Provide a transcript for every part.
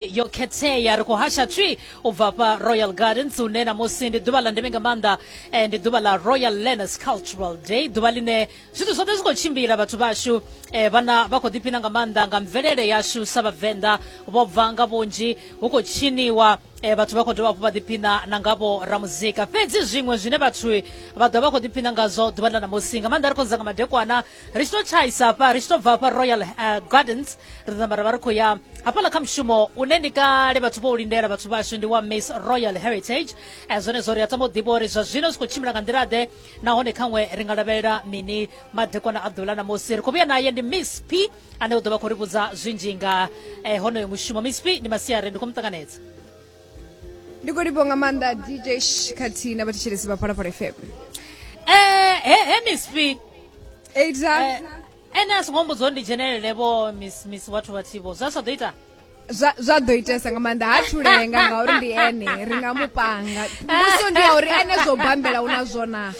yo khethea ri khou hasha tswi u bva fha royal gardens hune namusi ndi ḓuvha ḽa ndeme nga maanḓa eh, ndi ḓuvha ḽa royal learners cultural day ḓuvha ḽine zwithu zwoṱhe zwi khou tshimbila vhathu vhashu eh, vhana vha khou ḓiphina nga maanḓa nga mvelele yashu sa vhavenḓa vho bva nga vhunzhi hu khou tshiniwa eh, vhathu vha khou dovha hafhu vha ḓiphina na nga vho ramuzika fhedzi zwiṅwe zwine vhathu vha ḓo vha khou ḓiphina ngazwo ḓuvha ḽa namusi nga maanḓa ri khou dza nga madekwana ri tshi to tshaisa hafha ri tshi to bva hafha royal uh, gardens ri namba ra vha ri khou ya hafhaḽa kha mushumo une ndi kale vhathu vho u lindela vhathu vhashu ndi wa miss royal heritage eh, zwone zwo ri a tama u ḓivha uri zwa zwino zwi khou tshimbila nga nḓila ḓe nahone khaṅwe ri nga lavhelela mini madekwana a ḓuvha ḽa ṋamusi ri khou vhuya naye ndi miss p ane u ḓo vha khou ri vhudza zwinzhi nga eh, honoyo mushumo miss p ndi masiari ndi khou mu ṱanganedza ndi khou livho nga maanḓa dj khathihi na vhathetshelesi vha phalaphala fm eh, he he miss f eita eh, ene a songo mbudzo ndi dzhenelele vho miss miss vhathu vhathivo zwa sa ḓo ita zwa ḓo itesa nga maanḓa ha thulenga ngauri ndi ene ri nga mu panga mbuso ndi ya uri ene zwo bambela u na zwona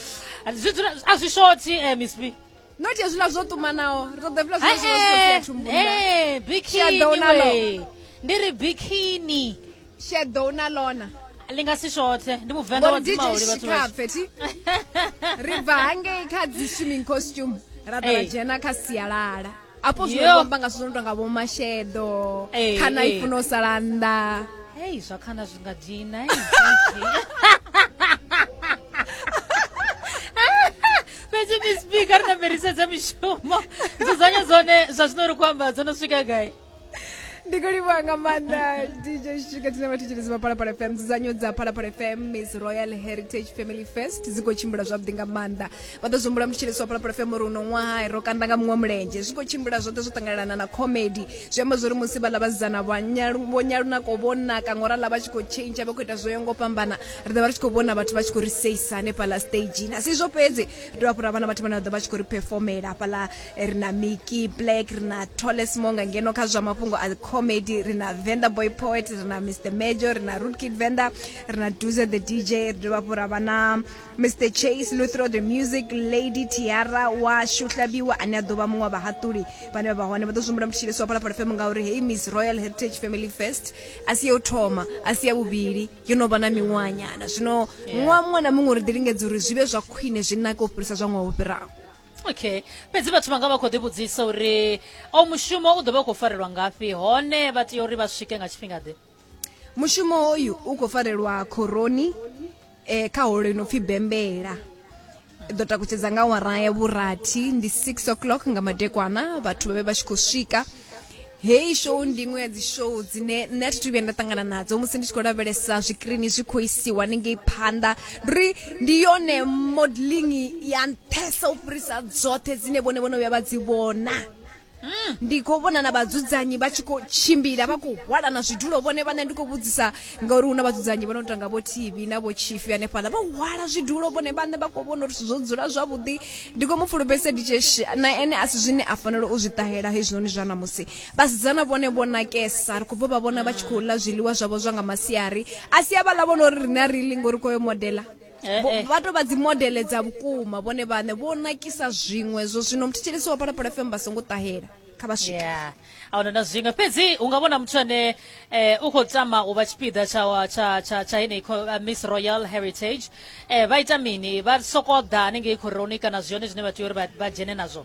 a zwi shothi eh, miss f not hezwiḽa zwo ṱumanaho ri ṱoḓa hezwiḽa zwine zwi vha zwi khou thumbuni ee bikini we ndi ri bikini sheḓo u na lona li nga si shothe ndi muvenḓa wa dzimauli vhathu vhashikapfethi ri bva hangei kha dzi swimming costume ra ḓa ra dzhena kha sialala afho zwine vho amba nga zwithu zwo no tonga vhomasheḓo khana i funa u sala nnḓa hei zwa khana zwi nga dina fhedzi mispi kha ri na fhirisedza mishumo dzudzanya dzone zwa zwino ri khou amba dzo no swika gai ndi khou livhuwa nga maanḓa dj shika tshine vha thetshelezi vha phalaphala fm dzudzanyo dza phalaphala fm miss royal heritage family fest dzi khou tshimbila zwavhuḓi nga maanḓa vha ḓo zwihumbula mutshelesi wa phalaphala fm uri uno ṅwaha ro kanda nga muṅwe mulenzhe zwi khou tshimbila zwoṱhe zwo ṱanganelana na comedy zwi amba zwo uri musi vhaḽa vhasidzana vho nyalunako vho naka ngorala vha tshi khou tshentsha vha khou ita zwo yo ngo fhambana ri ḓo vha ri tshi khou vhona vhathu vha tshi khou ri seisa hanefhaḽa stagini a si izwo fhedzi ri dovha fhura vhana vhathu vhane vha ḓo vha tshi khou ri performela hafhaḽa ri na miki black ri na tolesmo nga ngeno kha zwa mafhungo a comedy ri na venda boy poet ri na mr major ri na root kid venda ri na duze the dj ri dovha fhura vha na mr chase luthro the music lady tiara wa shuhlabiwa ane a ḓo vha muṅwe wa vhahaṱuli vhane vha vha hone vha ḓo zwimbula mutshilisi wa phalaphala fm ngauri hei miss royal heritage family fest a si ya u thoma a si ya vhuvhili yo no vha na miṅwahanyana zwino ṅwaha muṅwe na muṅwe ri ḓi lingedza uri zwi vhe zwa khwine zwi nake u fhirisa zwa ṅwaha wo fhiraho okay fhedzi vhathu vha nga vha khou ḓivhudzisa uri o mushumo u ḓo vha u khou farelwa ngafhi hone vha tea uri vha swike nga tshifhinga ḓe mushumo hoyu u khou farelwa khoroni eh, kha holo ino pfi bembela i ḓo takutshedza nga awara ya vhurathi ndi 6 o'clock nga madekwana vhathu vha vhe vha tshi khou swika heyi show ndi iṅwe ya dzi show dzine nṋe a thi thu vhuya nda ṱangana nadzo musi ndi tshi khou lavhelesa zwikirini zwi khou isiwa hanengei phanḓa ndi uri ndi yone modeling ya nṱhesa u fhirisa dzoṱhe dzine vhone vhono vhuya vha dzi vhona ndi khou vhona na vhadzudzanyi vha tshi khou tshimbila vha khou hwalana zwidulo vhone vhane ndi khou vhudzisa ngauri hu na vhadzudzanyi vha no tanga vho tv na vho chifi hanefhaḽa vha hwala zwidulo vhone vhane vha khou vhona uri zwithu zwo dzula zwavhuḓi ndi khou mu fulufhedzisa ditsheshi na ene a si zwine a fanela u zwi ṱahela hezwinoni zwa ṋamusi vhasidzana vhone vho nakesa ri khou bva vha vhona vha tshi khou ḽa zwiḽiwa zwavho zwa nga masiari a si a vhaḽa vhona uri riṋe a ri ḽi ngori khoyo modela Eh, Vho- eh. vha to vha dzi modele dza vhukuma vhone vhaṋe vho nakisa zwiṅwe zwo zwino muthetshelesi wa phalaphala fm vha songo ṱahela kha vha swike ya ahuna na zwiṅwe fhedzi u nga vhona muthu ane eh, u khou tama u vha tshipiḓa tsha wa- tsha tsha tsha heneyi kho- eh, miss royal heritage eh, vha ita mini vha sokou ḓa hanengei khoroni kana zwione zwine vha tea uri vha- vha dzhene nazwo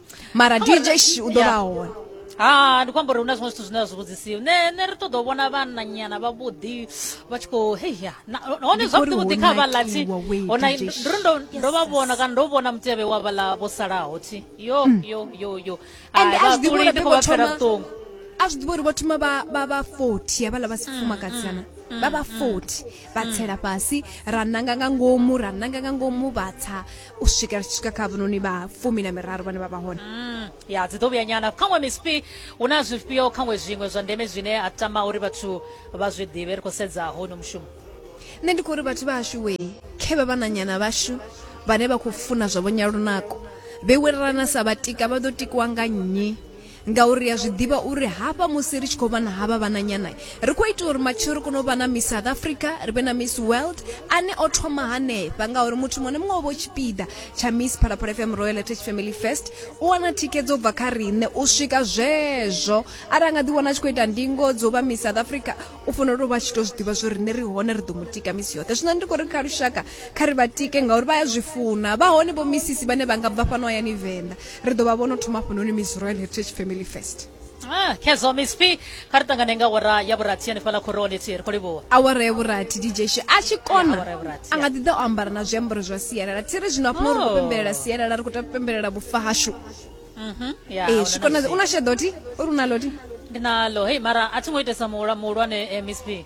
mara dj sh u ḓo vha Yeah. hone ha ndi kwamba uri hu na zwiṅwe zwithu zwine a zwi vhudzisiwi ne ne ri ṱoḓa u vhona vhananyana vhavhuḓi vha tshi khou heya hone Ndi zwavhuḓi uri vhuḓi ho kha vhaḽati nakiwa we, hona DJ Sh. ndo ndo ndo vha vhona kana ndo vhona mutevhe wa vhaḽa vho salaho thi yo yo yo yo and Hai, a zwi ḓivhi vhaṱuli uri ndi vhe khou vho vha fhela thoma vhuṱungu a zwi ḓivhi uri vho thoma vha vha vha 40 havhaḽa vha sifumakadzana vha vha 40 vha tsela fhasi ra nanga nga ngomu ra nanga nga ngomu vha tsa u swika ri tshi swika kha avhunoni vha fumi na miraru vhane vha vha hone mm, ya dzi ḓo vhuya nyana khaṅwe mispi hu na zwifhio khaṅwe zwiṅwe zwa ndeme zwine a tama uri vhathu vha zwi ḓivhe ri khou sedza hono mushumo nṋe ndi khou uri vhathu vhashu we khe vha vhananyana vhashu vhane vha khou funa zwavho nyalunako vhe werelana sa vhatika vha ḓo tikiwa nga nnyi ngauri ri a zwi ḓivha uri hafha musi ri tshi khou vha na havha vhananyana ri khou ita uri matshelo ri kone u vha na miss south africa ri vhe na miss world ane o thoma hanefha ngauri muthu muṅwe na muṅwe o vha tshipiḓa tsha miss phalaphala fm royal attach family fest u wana thikhedzo u bva kha riṋe u swika zwezwo arali nga ḓi wana a tshi khou ita ndingo dzo vha miss south africa u fanela u vha tshi to zwi ḓivha zwo riṋe ri hone ri ḓo mu tika misi yoṱhe zwino ndi khou ri kha lushaka kha ri vha tike ngauri vha ya zwi funa vha hone vho misisi vhane vha nga bva fhano hayani venḓa ri ḓo vha vhono thoma hafhanoni miss royal heritage family first Ah, khezwo miss p kha ri ṱangane nga wara ya vhurathi hanefhaḽa khoroni thi ri khou livhuwa awara ya vhurathi dj sho a tshi kona awara ya vhurathi, a nga ḓi ḓa o ambara na zwiambaro zwa sialala thi ri zwino hafhano ri khou Oh. pembelela sialala ri khou ta pembelela vhufa hashu Mhm, ya, ee huna zwi na kona zwi- u na sheḓo ti uri u na loti ndi nalo hei mara a thi ngo itesa muhula- muhulwane eh, miss p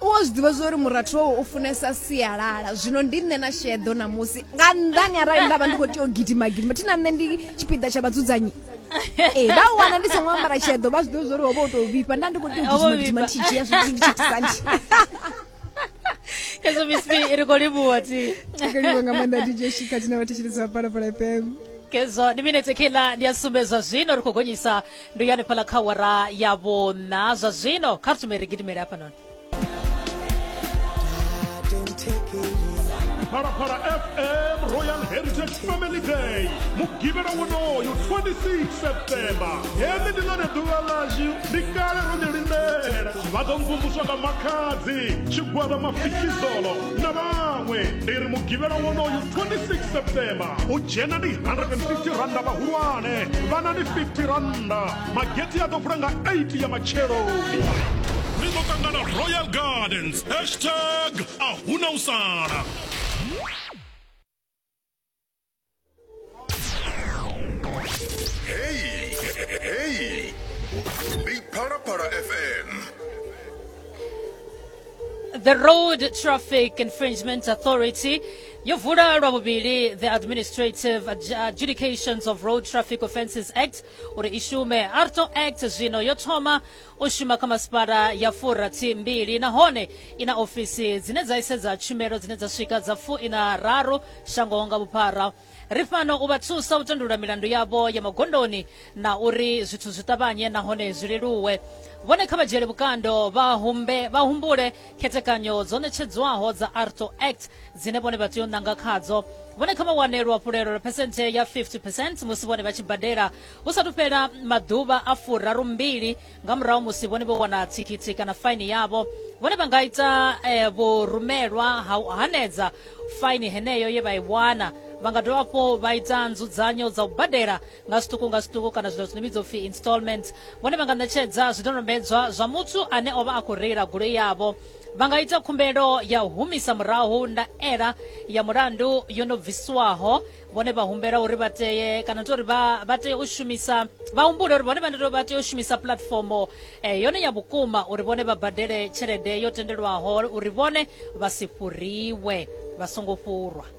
u a zwi ḓivha zwori murathu wawe u funesa sialala zwino ndi nṋe na sheḓo ṋamusi nga nnḓani arali nda vha ndi khou tea u gidima gidima thi na nṋe ndi tshipiḓa tsha vhadzudzanyi ee vha u wana ndi songo ambara sheḓo vha zwi ḓivha zwori ho vha u tou vhifha nda ndi khou tea u gidima gidima ndi tshi dzhia zwithu ndi tshi tisani hezwo mispi ri khou livhuwa ti akaliwa nga maanḓa dj shika tshina vhathetshelezi vha palapala fm kezwo ndi minetse khiḽa ndi a sumbedzwa zwino ri khou gonyisa ndo ya hanefhaḽa kha wara ya vhona zwa zwino kha ri tumele ri gidimele hafhanoni phalaphala fm royal heritage family day mugivhela wonoyo 26 septemba heḽi ndi ḽone ḓuvha ḽashu ndi kale ro ḽi lindela vha ḓo mvumvuswa nga makhadzi tshigwada mafikizolo na vhaṅwe ndi ri mugivhela wonoyo 26 septemba u dzhena ndi 150 randa vhahulwane vhana ndi 50 randa mageti a ḓo vula nga 8 ya matshelo ni ḓo ṱangana royal gardens hashtag a huna u sala Hey, hey. Big Para Para FM. The Road Traffic Infringement Authority yo vula lwa vhuvhili the administrative adjudications of road traffic offences act uri i shume arto act zwino yo thoma u shuma kha masipala ya furathi mbili nahone i na ofisi dzine dza isedza tshumelo dzine dza swika dza fu ina raru shango nga vhuphara ri fhano u vha thusa u tandulula milandu yavho ya magondoni na uri zwithu zwi ṱavhanye nahone zwi leluwe vhone kha vha dzhiele vhukando vha humbule khethekanyo dzo ṋetshedzwaho dza arto act dzine vhone vha tea u ṋanga khadzo vhone kha vha wane luhafhulelo lwa phesenthe ya 50 percent musi vhone vha tshi badela hu sathu fhela maḓuvha a furaru mbili nga murahu musi vhone vho wana thikhithi kana faini yavho vhone vha nga ita eh, vhurumelwa ha u hanedza faini heneyo ye vha i wana vha nga dovha hafhu vha ita nzudzanyo dza u badela nga zwiṱuku nga zwiṱuku kana zwino zwine vhidzwa upfi installments vhone vha nga ṋetshedza zwidodombedzwa zwa muthu ane o vha a khou reila goloi yavho vha nga ita khumbelo ya u humisa murahu ndaela ya mulandu yo no bvisiwaho vhone vha humbela uri vha teye kana tori vha vha tea u shumisa vha humbule uri vhone vha vha tea u shumisa puḽatifomo eh, yone ya vhukuma uri vhone vha badele tshelede yo tendelwaho uri vhone vha si fhuriwe vha songo fhurwa